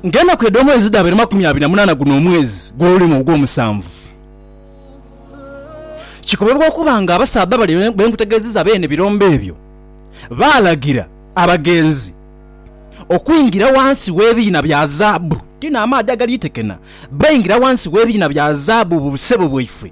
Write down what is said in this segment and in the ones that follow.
Ng'enaku edh'omwezi dhabaire makumi abiri na munaana guno omwezi gw'olulimu ogw'omusanvu, kikobebwa okuba nga abasaadha bali be nkutegeezezza beene birombe ebyo, baalagira abagenzi okwingira wansi w'ebiina bya zaabu, ti n'amaadhi agaliitekena, baingira wansi w'ebiina bya zaabu mu busebo bwaifwe.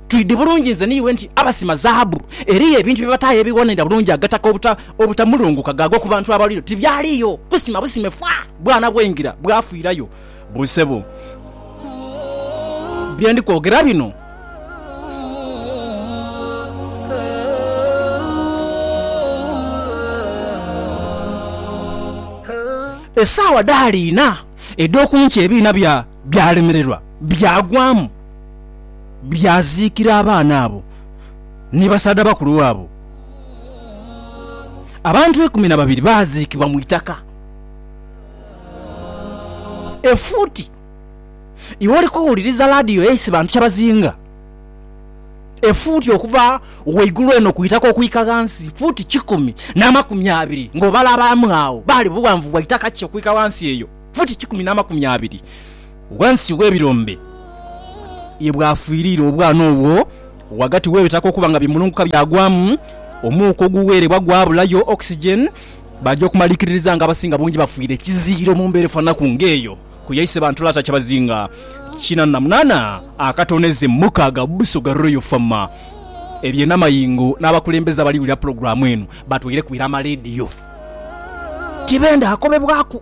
Twidhi bulungi nze n'iwe nti abasima zaabu eriyo ebintu bye bataayo ebiwonera bulungi agataka obuta, obutamulunguka gaagwa ku bantu abalwire oti byaliyo. Busima busime fa! Bwana bw'engira bwafiirayo busebo. Bye ndi kwogera bino. Esaawa dhaali ina edh'oku nkya ebiina bya, byalemererwa, byagwamu. Byaziikira abaana abo ni basaadha bakulu baabo. Abantu eikumi na babiri baaziikibwa mu itaka efuuti. Iwe oli kuwuliriza laadiyo eisi bantu kye bazinga efuuti okuva waigulu eno ku itaka okwika ghansi, fuuti kikumi n'amakumi abiri. Ng'obala abaamu agho, baali bughanvu bwa itaka ki okwika ghansi eyo? Fuuti kikumi n'amakumi abiri. Ghansi w'ebirombe ye bwafiirira obwana obwo, ghagati w'ebitaka okuba nga bimulunguka byagwamu, omuuka oguweerebwa gwabulayo, oxygen, baja okumalikiririza nga abasinga bungi bafiire kiziro mu mbeera efananaku ng'eyo ku yaise bantu lata kyabazinga kinana na munana akatoneze mukaaga mu Busoga Royal Farmer. Ebyenamayengo n'abakulembeze abali wulira pulogulaamu eno batweireku ira amalediyo tibenda akobebwaku.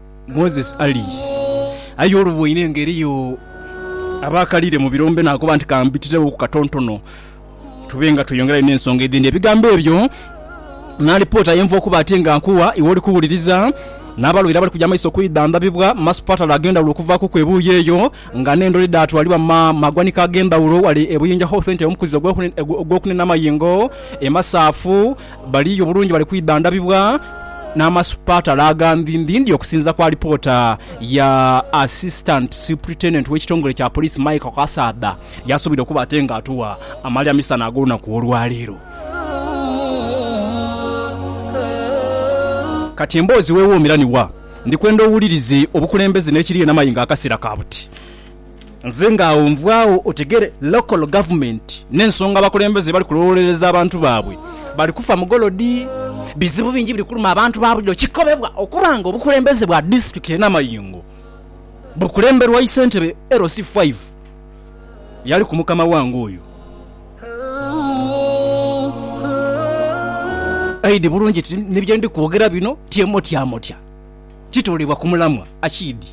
Moses Ali. Aye oluboine nga eriyo abakalire mu birombe nakoba nti kambitireghoku katontono tube nga tweyongerayo n'ensonga edhindi. Ebigambo ebyo n'alipoota ayenva okuba ate nga nkuwa iwe oli kuwuliriza n'abalwaire abali kuja maiso kwidhandhabibwa mu masupatala ag'endhawulo okuvaakuku ebuuyi eyo nga n'endhole dhaatwalibwa mu ma magwanika ag'endhawulo wale e Buyinja Health Centre omukuzi ogw'okunena amayingo, emasaafu Bali yo bulungi bali kwidhandhabibwa n'amasupatala aga ndhindhindhi okusinza ku alipoota ya Assistant Superintendent w'ekitongole kya Poliisi Michael Kasaadha yaasubira okuba ate nga atuwa amalira misana ag'olunaku olwaleero. Kati emboozi wewoomera ni wa? Ndikwenda owulirize obukulembeze n'ekiri enamayingo akasera ka buti. Nze nga agho nvwaagho otegere local government nensonga abakulembeze bali kulowolereza abantu baabwe bali kufa mugolodi. Bizibu bingi biri kuluma abantu babulijo kikobebwa okuba nga obukulembeze bwa district ye Namayingo bukulemberwa isentebe LC five yali ku mukama wange oyo Aid bulungi nti ni byendi kwogera bino tyemotya motya kitoolebwa ku mulamwa Achiid.